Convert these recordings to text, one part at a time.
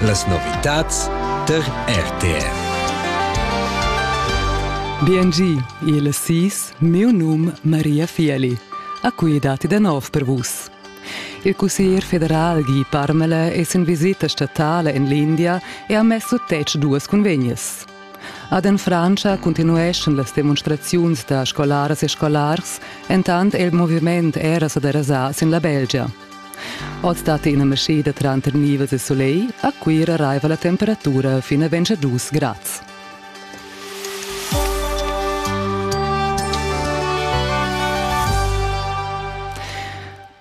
Las novitads tar RTR. BNG, il SIS, mio num Maria Fieli. A cui dati da nov per vus. Il cussier federal Guy Parmele es in visita statale in l'India e ha messo tec duas convegnes. Ad en Frantscha continueschan las demonstraziuns da scolaras e scolars, entant il moviment era sa derasà sin la Belgia – Oz dat ina maschida tranter nivels e soleil, a Cuira raiva la temperatura fin a ventg dus grads.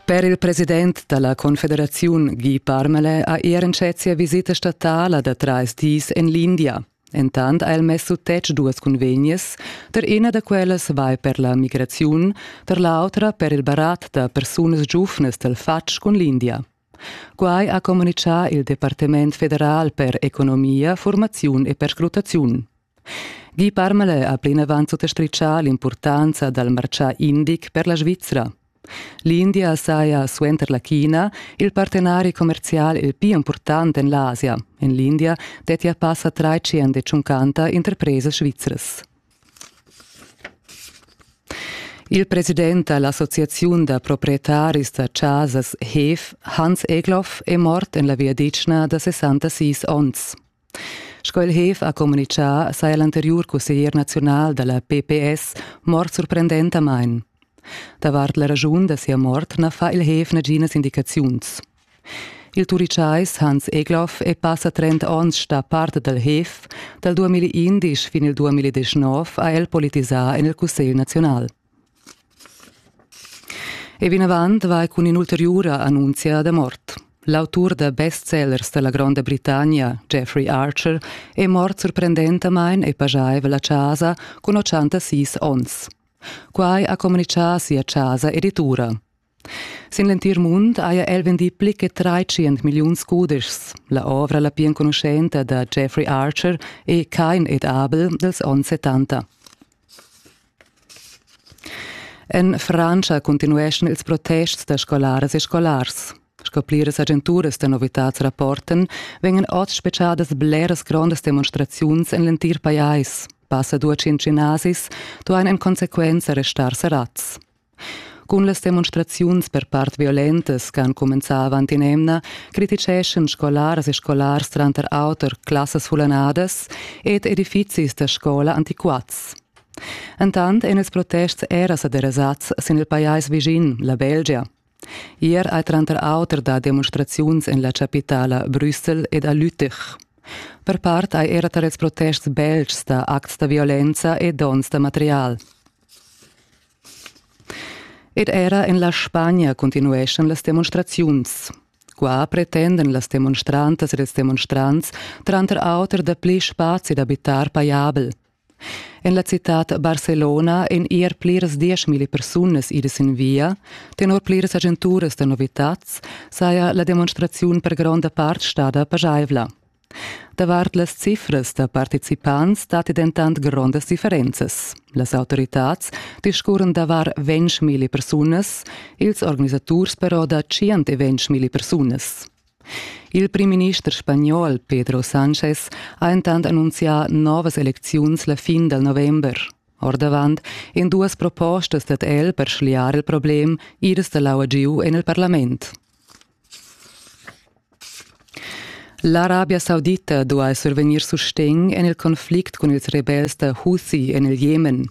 Per il president dalla confederaziun Guy Parmelin ha er entschet sia visita statala da trais dis en l'India. Entant ha el mess sut tetg duas cunvegnas, tar ina da quellas vai per la migraziun, tar l'autra per il barat da persunas giuvnas dal fatg cun l'India. Quai ha communitgà il Departament federal per economia, formaziun e perscrutaziun. Guy Parmale ha plinavant sutastritgà l'impurtanza dal martgà indic per la Svizra. L'India saja suenter la China il partenari commerzial il pli impurtant en l'Asia. En l'India dettia passa tschenta interpresas svizras. Il president da l'associaziun da proprietaris da chasas HEF, Hans Egloff, è mort en la viadichna da 66 onns. Sco il hef ha communitgà, saja l'anteriur cusseglier naziunal da la PPS mort surprendentamain. Davart la raschun da sia mort na fa il hef naginas indicaziuns. Il turicais Hans Egloff è passa 30 onns stà part dal hef. Dal 2011 fin il 2019 ha el politisà en il Cussegl naziunal. E vinavant vai cun in'ulteriura annunzia da mort. L'autur da bestsellers da la Gronda Britannia, Jeffrey Archer, è mort surprendentamain e pajaivel a chasa cun 86 onns. Quai ha communitgà sia chasa editura. Sin l'entir mund haja el vendì pli che tratschient milliuns cudeschs. La ovra la pli enconuschenta da Jeffrey Archer è Kein et Abel dals onns 70. En Frantscha continueschan ils protests da scolaras e scolars. Sco pliras agenturas da novitads rapportan, vegnan oz spetgadas bleras grondas demonstraziuns en l'entir pajais. Passa duaschient gimnasis duain en consequenza restar serrads. Cun las demonstraziuns per part violentas che han cumenzà avant in'emna criticeschan scolaras e scolars tranter auter classas fullanadas ed edifizis da scola antiquats. Entant èn ils protests era sa derasads sin il pajais vischin, la Belgia. Ier hai tranter auter dà demonstraziuns en la chapitala Brüssel ed a Lüttich. Per part hai era tar ils protests beltgs dà acts da violenza e dons da material. Ed era en la Spagna continueschan las demonstraziuns. Qua pretendan las demonstrantas ed ils demonstrants tranter auter dapli spazi d'abitar pajabel. En la citad Barcelona èn er pliras dieschmilli persunas idas sin via. Tenor pliras agenturas da novitads saja la demonstraziun per gronda part stada pajaivla. Davart las cifras da participants datti dentant grondas differenzas. Las autoritads discurren davar ventg persunas, ils organisaturs però da tschient e ventg persunas. Il primminister spagnol Pedro Sanchez ha entant annunzià novas elecziuns la fin dal november. Ordavant en duas propostas dad el per schliar il problem, iras da l'aua giu en il parlament. L'Arabia Saudita duai survegnir sustegn en il conflict cun ils rebels da Houthi en il Jemen.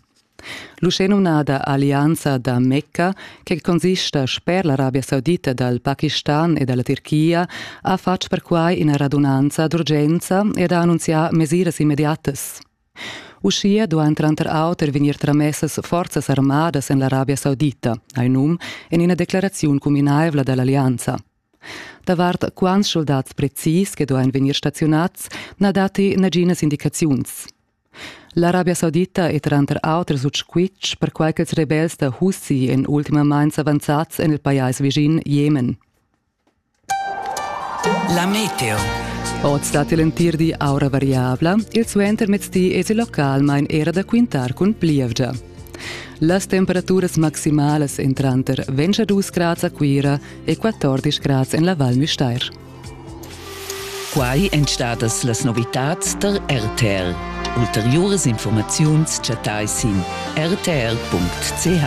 L'uschenumnada Allianza da Mecca, che consista sper l'Arabia Saudita dal Pakistan e dalla Tirchia, ha fatg perquai ina radunanza d'urgenza ed ha annunzià mesiras immediatas. Uschia duain tranter auter vegnir tramessas forzas armadas en l'Arabia Saudita, ha num en ina declaraziun cuminaivla da l'allianza. Davart quants schuldads precis che duain vegnir staziunads na datti naginas indicaziuns. L'Arabia Saudita è tranter auter sut squitsch perquai ch'ils rebels da Houthi èn ultimamain s'avanzads en il pajais vischin Jemen. La meteo. Oz dat il entir di aura variabla, il suentermezdi es il localmain era da quintar cun plievgia. Las temperaturas maximalas en tranter 22 grads a Cuira e 14 grads en la Val Müstair. Quai èn stadas las novitads tar RTR. Ulteriuras informaziuns chattai sin rtr.ch.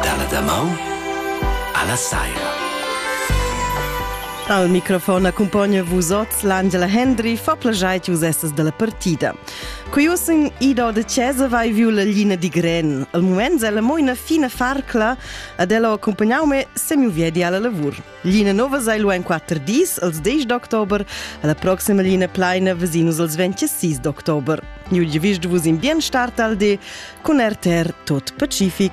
Dalla damaun alla saira. Al microfon accompagna vus ots l'Angela Hendry fa plagiai vus essas della partida. Quiusin id da Cesa vai viu la lina di Gren. Al moment ella mo ina fina farcla Ad ella ho accumpagnau me semiu viedi alla lavur. L'ina nova sai lu en quatter dis, als 10 d'october, alla proxima linea plaina vesinus als 26 d'october. New Division vus in bien start al di con RTR Tot Pacific.